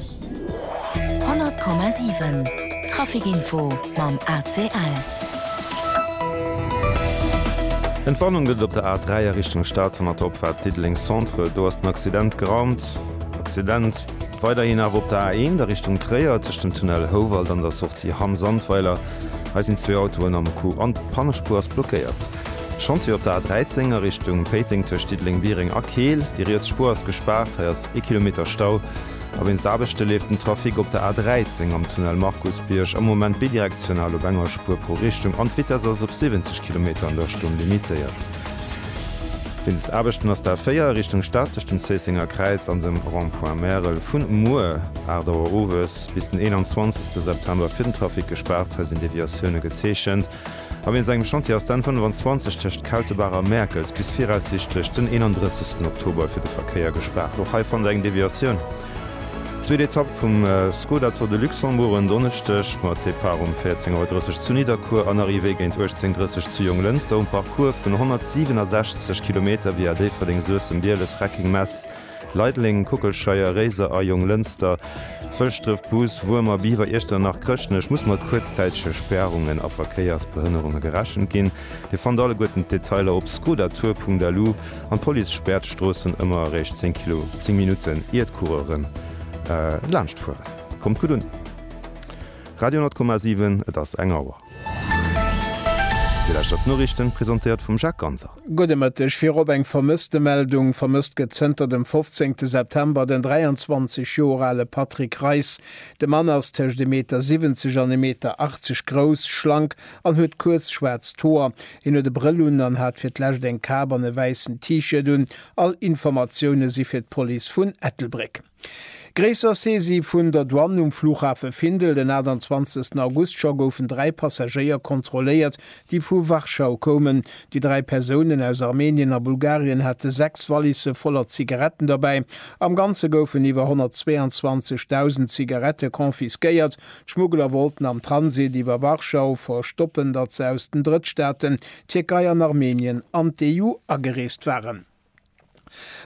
100,7 Trafic-Info mam ACL. Entwarnung gëtt et op der A3 a Richtung Stad hannert der Opfaart Diddeleng Centre. Do ass den Accident geraumt. Accident weiderhin awer op der A1 a Richtung Tréier tëscht dem Tunnel Houwald an der Sortie Hamm Sandweiler. Hei sinn zwee Autoen am Coup an d'Pannespuer ass blockéiert. Chantier op der A13 a Richtung Péiteng tëscht Diddeleng-Biereng a Keel. Déi riets Spuer ass gespaart. Hei ass ee Kilometer Stau, a wéinst Aarbechte leeft den Trafic op der A 13 am Tunnel Markusbierg am Moment bidirektional op enger Spuer pro Richtung an d'Vitess ass op 70 Kilometer an der Stonn limitéiert. Wéinst Aarbechten ass d'A 4 a Richtung Stad tëscht dem Zéissenger Kräiz an dem Rond-point Märel vun muer 8 Auer owes bis den 21 September fir den Trafic gespaart, hei sinn Deviatioune gezeechent. A wien sengem Chantier ass den 25 tëscht Kautebaach a Mäerkels bis viraussiichtlech den 31 Oktober fir de Verkéier gespaart. Och hei fannt der eng Deviatioun. Zweet Etapp vum Skoda Tour de Luxembourg en Donneschdeg mat Depart um 14 Auer 30 zu Nidderkuer an Arrivée géint 18 30 zu Jonglënster um Parcours vun 167 Kilometer via Déifferdeng, Suessem, Bieles, Reckeng, Mess, Leideleng, Kockelscheier, Réiser a Jonglënster, Fëlschdref, Bus, Wuermer, Biwer, Iechternach, Chrëschtnech muss mat kuerzzäitege Spärungen a Verkéiersbehënnerunge gerechent ginn. Dir fannt alleguerten d'Detailer op skoda-tour.lu. An d'Police späert d'Stroossen ëmmer eréischt 10 Kilo 10 Minutten, ier d'Coureuren laanscht fueren. Kommt gutt un! Radio 10,7, et ass eng Auer. Déi leschtert Noriichten presentéiert vum Jacques Ganser. Gudde Mëtteg. Virop eng Vermësstemeldung. Vermësst gëtt zënter dem 15 September den 23 Joer ale Patrick Reis. De Mann ass tëscht e Meter 70 an e Meter 80 grouss, schlank an huet kuerz schwaarzt Hoer. Hien huet e Brëll un an hat fir d'lescht eng Kap an e wäissen T-Shirt un. All Informatioune si fir d'Police vun Ettelbréck. Gréisser Saisie vun der Douane um Flughafe Findel, Den 28 August scho goufen dräi Passagéier kontrolléiert, déi vu Warschau koumen. Déi dräi Persounen aus Armenien a Bulgarien hate sechs Wallisse voller Zigaretten derbäi. Am Ganze goufen iwwer 122.000 Zigarette confisquéiert. D'Schmuggler wollten am Transit iwwer Warschau verstoppen, datt se aus den Drëttstaaten, Tierkei an Armenien, an d'EU agereest waren.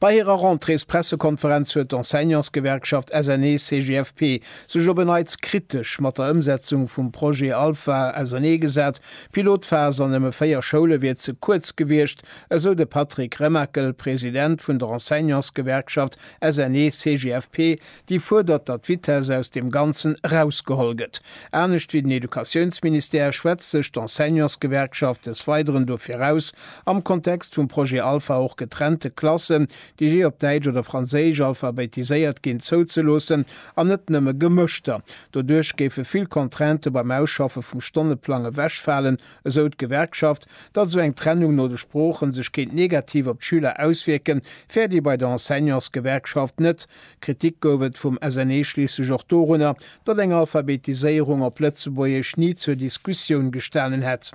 Bei hirer Rentréespressekonferenz huet d'Enseignantsgewerkschaft SNECGFP sech op en Neits kritesch mat der Ëmsetzung vum Projet Alpha ausernee gesat. D'Pilotphas an nëmme 4 Schoule wier ze kuerz gewiescht, esou de Patrick Remakel, President vun der Enseignantsgewerkschaft SNECGFP, Déi fuerdert, datt d'Vitesse aus deem Ganzen erausgeholl gëtt. Anescht wéi den Educatiounsministère schwätzt sech d'Enseignantsgewerkschaft des Weideren dofir aus, am Kontext vum Projet Alpha och getrennte Klassen, déi jee op Däitsch oder Franséisch alphabetiséiert ginn, zouzeloossen an net nëmme gemëschter. Doduerch géife vill Contraintë beim Ausschaffe vum Stonneplang ewechfalen, esou d'Gewerkschaft. Datt esou eng Trennung no de Sproochen sech kéint negativ op d'Schüler auswierken, fäert ee bei der Enseignantsgewerkschaft net. Kritik gouf et vum SNE schliisslech och dorunner, datt eng Alphabetiséierung op Lëtzebuergesch ni zur Diskussioun gestanen hätt.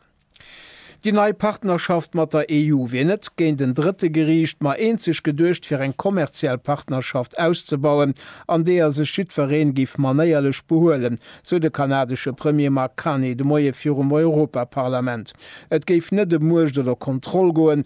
Déi nei Partnerschaft mat der EU wier net géint en Drëtte geriicht, ma eenzeg geduecht fir eng kommerziell Partnerschaft auszebauen, an deeër sech jiddwereen géif manéierlech behuelen, sou de kanadesche Premier Mark Carney de Moie virum Europaparlament. Et géif net ëm Muecht oder Kontroll goen,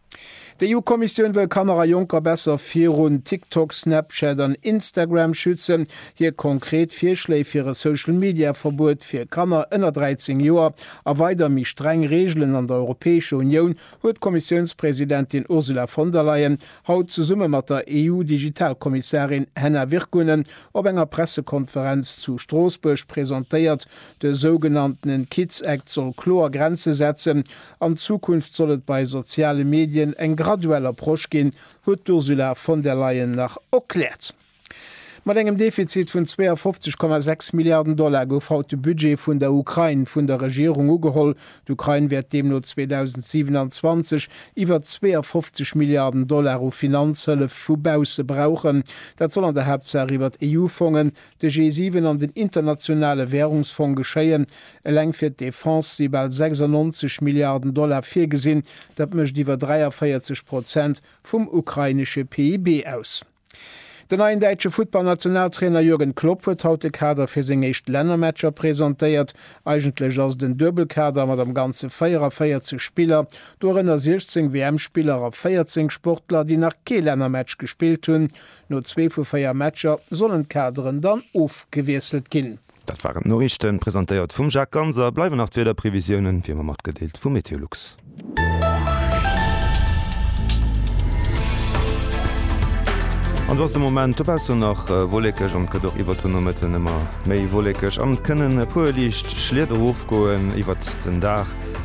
D'EU-Kommissioun wëll Kanner a Jonker besser virun TikTok, Snapchat an Instagram schützen. Hir konkret Virschléi fir e Social-Media-Verbuet fir Kanner ënner 13 Joer a weider méi streng Reegelen an der Europäescher Unioun huet d'Kommissiounspresidentin Ursula von der Leyen haut zesumme mat der EU-Digitalkommissarin Henna Virkkunen op enger Pressekonferenz zu Stroossbuerg presentéiert. De sougenanntene Kids Act soll kloer Grenze setzen, An Zukunft soll et bei soziale Medien eng graduell Approche ginn, huet d'Ursula von der Leyen nach erkläert. Mat engem Defizit vun 52,6 Milliarden Dollar gouf haut de Budget vun der Ukrain vun der Regierung ugeholl. D'Ukrain wäert deemno 2027 iwwer 52 Milliarden Dollar u Finanzhëllef vu bausse brauchen. Dat soll an der Haaptsaach iwwer EU-Fongen, de G7 an den Internationale Währungsfong geschéien. Eleng fir d'Defense si bal 96 Milliarden Dollar virgesinn, dat mécht iwwer 43 Prozent vum ukrainesche PIB aus. Den neien däitsche Futtballnationaltrainer Jürgen Klopp huet haut de Kader fir seng éischt Lännermatcher presentéiert. Eigentlech ass et en Duebelkader mat am Ganze 44 Spiller, dorënner 16 WM-Spiller a 14 Sportler, déi nach kee Lännermatch gespillt hunn. No zwee vu véier Matcher sollen d'Kaderen dann ofgewiesselt ginn. Dat waren d'Noriichten, presentéiert vum Jacques Ganser. Bleiwen nach d'Wiederprevisiounen, wéi ëmmer matgedeelt, vu Meteolux. An do ass de Moment dobaussen nach wollekeg an et gëtt och iwwert den Nomëtten ëmmer méi wollekeg an et kënnen e puer liicht Schliet erofgoen iwwert den Dag.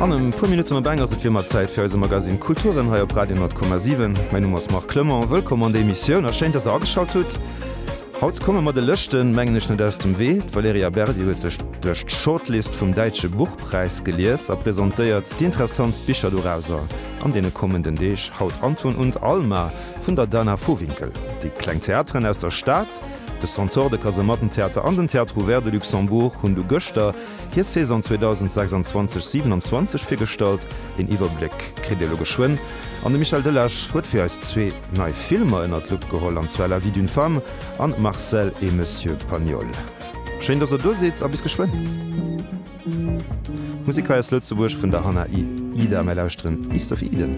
An e puer Minutten op eng ass et wiemmer Zäit fir eise Magazine Kulturen hei op Radio 10,7. Mäin Numm ass Marc Clement. Wëllkomm an der Emissioun a schéin, dass der ageschalt hutt. Haut komme mer de Lëschten, mengen ech, net aus dem Wee. D'Valerija Berdi huet sech duerch d'Shortlist vum Däitsche Buchpräis gelies a presentéiert déi interessantst Bicher dorauser an deene kommenden Deeg. Haut Anton und Alma vun der Dana Vohwinkel. Déi kleng Theateren aus der Stad. De Centaure, de Kasemattentheater an den Théâtre Ouvert de Luxembourg hunn du gëschter hir Saison 2026, 27 virgestallt. Een Iwwerbléck kritt Dir elo geschwënn an de Michel Delage huet fir eis zwee nei Filmer ënnert d'Lupp geholl, an zwar La vie d'une femme an Marcel et Monsieur Pagnol. Schéin, dass der do sidd a bis geschwënn! Musek hei aus Lëtzebuerg vun der Hannah Ida. Mir lauschteren East of Eden.